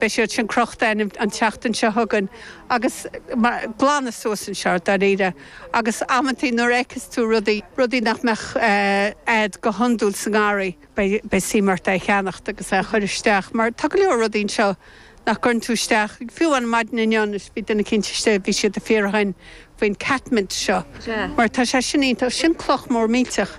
Beidh siad sin crochta againn an tseachtain seo chugainn agus glanadh suas anseo, dáiríre. Agus amantaí nuair a fheiceas tú rudaí, rudaí nach mbeadh a'd go hiondúil sa ngarraí, beidh suim ort é a cheannacht agus é a chuir isteach. Mar tá go leor rudaí anseo nach gcuireann tú isteach, fiú an maidin inniu anois bhí duine eicínt istigh, bhí siad ag fiafraí, faoin catmint seo mar tá sé sin iontach, sin cloch mór millteach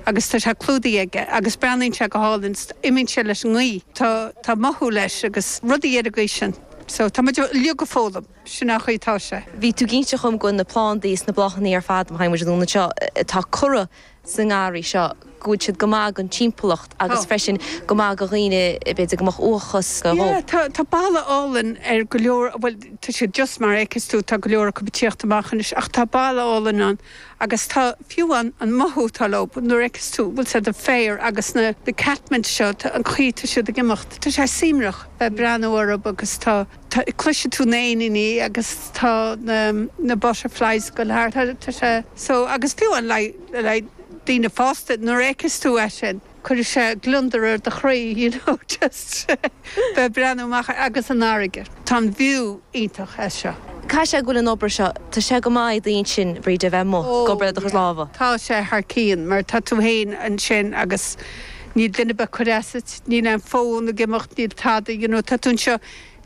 agus tá sé clúdaithe aige agus breathnaíonn sé go hálainn 's imíonn sé leis an ngaoth tá tá mothú leis agus rudaí ar an gcaoi sin so tá muid uilig ag foghlaim, sin an chaoi atá sé. Bhí tú ag inse dhom go bhfuil na plandaí 's na bláthannaí ar fad, mothaíonn muid an ionad seo, atá curtha sa ngarraí seo, go bhfuil siad go maith don timpeallacht agus freisin go maith go dhaoine, b'fhéidir go mbeadh uathachas nó. Yeah, tá, tá boladh álainn ar go leor, bhuel tá siad just mar a fheiceas tú, tá go leor acu ag tíocht amach anois ach tá boladh álainn ann agus tá fiú an, an mothú atá leo, nuair a fheiceas tú, bhfuil a fhios a'd an féar agus na, na catmint seo, tá, an chaoi atá siad ag imeacht, tá sé suaimhneach bheith ag breathnú orthub agus tá. Tá, cloisfidh tú na éiníní agus tá na, na butterflies go léir, tá, tá sé, so, agus fiú an like, like daoine fásta, nuair a fheiceas tú é sin, cuirfidh sé gliondar ar do chroí, you know, just bheith ag breathnú amach ar, agus an fharraige. Tá an view iontach as seo. Caithfidh sé go bhfuil an obair seo, tá sé go maith don intinn, Bríde, a bheith amuigh ag obair le do chuid lámha. Oh yeah, tá sé thar cionn, mar tá tú fhéin ansin agus níl duine ar bith ag cuir as duit, níl aon fón ag imeacht, níl tada, you know, tá tú anseo.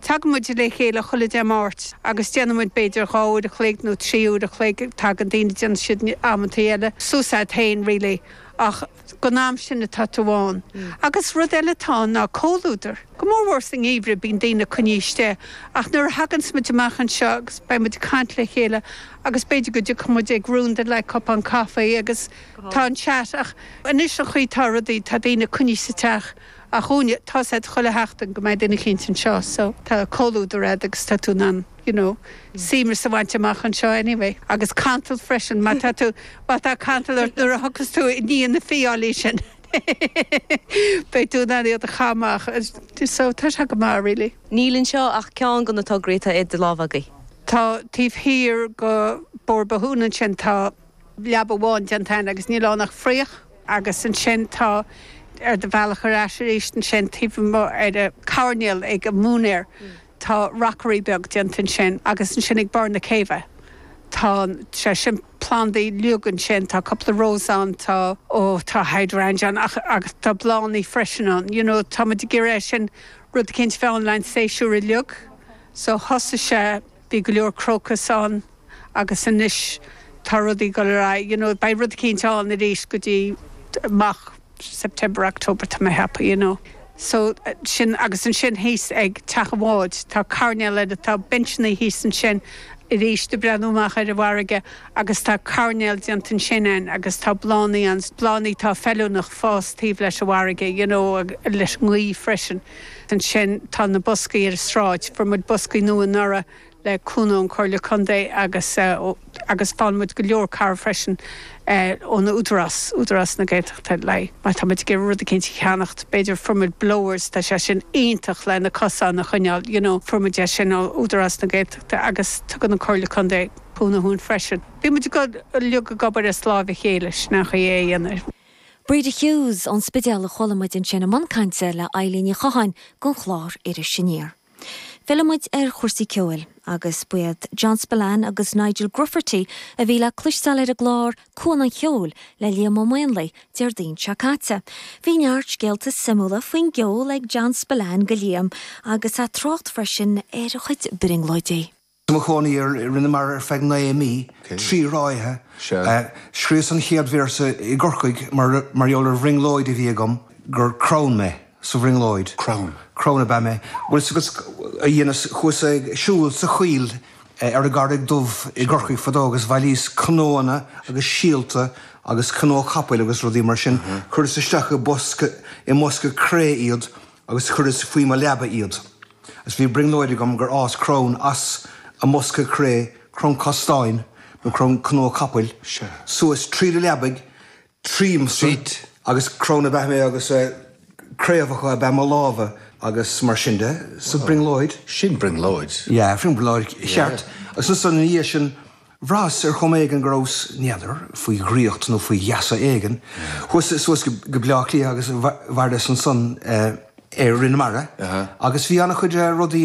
Tagann muid le chéile chuile Dé Máirt agus déanann muid b'fhéidir dhá uair a chloig nó trí uair a chloig, tagann daoine, déanann siad amantaí eile suas a'd féin really ach gon am sin atá tú ann. Agus rud eile atá ann ná comhluadar. Go mór mhór sa ngeimhreadh bíonn daoine coinnithe istigh ach nuair a thaganns muid amach anseo agus beidh muid ag caint le chéile agus b'fhéidir go dtiocfaidh muid around le haghaidh cupán caife agus tá an chat ach anois an chaoi tá rudaí, tá daoine coinnithe sa teach. Ach dhúinne, tá a fhios a'd chuile sheachtain go mbeidh duine eicínt anseo so tá comhluadar a'd agus tá tú in ann, you know, suaimhneas a bhaint amach anseo anyway. Agus cantal freisin, má tá tú, má tá cantal ort nuair a thiocfas tú i ndiaidh na fiáilí sin beidh tú in ann iad a chaitheamh amach so tá sé go maith really. Níl anseo ach ceann go na tograí atá idir lámha agaibh. Tá taobh thiar go Bóthar Bothúna ansin tá. leaba amháin déanta againn agus níl ann ach fraoch. Agus ansin tá, ar do bhealach ar ais arís ansin, taobh amuigh ar an choirnéal ag an mhúinéir, tá rockery beag déanta ansin. Agus ansin ag barr na céibhe, tá sé sin, plandaí uilig ansin, tá cupla rose ann, tá, ó tá hydrangea ann ach, agus tá bláthannaí freisin ann. You know, tá muid ag iarraidh é sin, rud eicínt a bheith ann le haghaidh an séasúr uilig. So thosaigh sé. Bhí go leor crocus ann agus anois tá rudaí ag dul ar aghaidh, you know, beidh rud eicínt ann arís go dtí amach September, October, tá mé happy, you know. So, sin, agus ansin thíos ag Teach an Bháid, tá coirnéal ann, tá bencheannaí thíos ansin arís ag breathnú amach ar an bhfarraige agus tá coirnéal déanta ansin againn agus tá bláthannaí ann, bláthannaí atá feiliúnach ag fás taobh leis an bhfarraige, you know, leis an ngaoth freisin. Ansin tá na boscaí ar an tsráid. Fuair muid boscaí nua anuraidh le cúnamh ón Comhairle Contae agus agus faigheann muid go leor cabhair freisin ón Údarás, Údarás na Gaeltachta le má tá muid ag iarraidh rud eicínt a cheannacht. B'fhéidir, fuair muid blowers, tá sé sin iontach le na cosáin a choinneáil, you know, fuair muid é sin ó Údarás na Gaeltachta agus tugann an Comhairle Contae cúnamh dhúinn freisin. Bhí muid ag dul uilig ag obair as láimh a chéile, sin é an chaoi lena dhéanamh. Breda Hughes ón Spidéal a chuala muid ansin i mbun cainte le Eibhlín Ní Chatháin don chlár Iris Aniar. Filleann muid ar chúrsaí ceoil agus ba iad John Spillane agus Nigel Grufferty a bhí le cloisteáil ar an gclár Cuan an Cheoil le Liam Ó Maonlaí Déardaoin seo caite. Bhí neart scéalta suimiúla faoin gceol ag John Spillane do Liam agus é ag trácht freisin ar a chuid brionglóidí. I mo chónaí ar Rinn na Mara ar feadh naoi mí, trí ráithe. Scríos an chéad véarsa i gCorcaigh mar gheall ar bhrionglóid a bhí agam gur crann mé sa bhrionglóid. Crann. Crann ab ea mé. Bhuel s'agus a dheineas, chuas ag siúl sa choill ar an gCarraig Dhubh i gCorcaigh fadó agus bhailíos cnóanna agus síolta agus cnó capaill agus rudaí mar sin, chuireas isteach i bosca, i mbosca cré iad agus chuireas faoi mo leaba iad, agus bhí brionglóid agam gur fhás crann as an mbosca cré, crann castáin, nó crann cnó capaill, suas tríd an leabaidh tríomsa, agus crann ab ea mé agus craobhacha ab ea mo lámha agus mar sin de, sa bhrionglóid. Sin brionglóid. Yeah, sin brionglóid cheart. Agus ansan ina dhiaidh sin, Bhraitheas ar chuma éigin go rabhas, n'fheadar, faoi dhraíocht nó faoi gheasa éigin. Chuas suas go Bleá Cliath agus mhaireas ansan ar Rinn na Mara agus bhí an-chuid rudaí,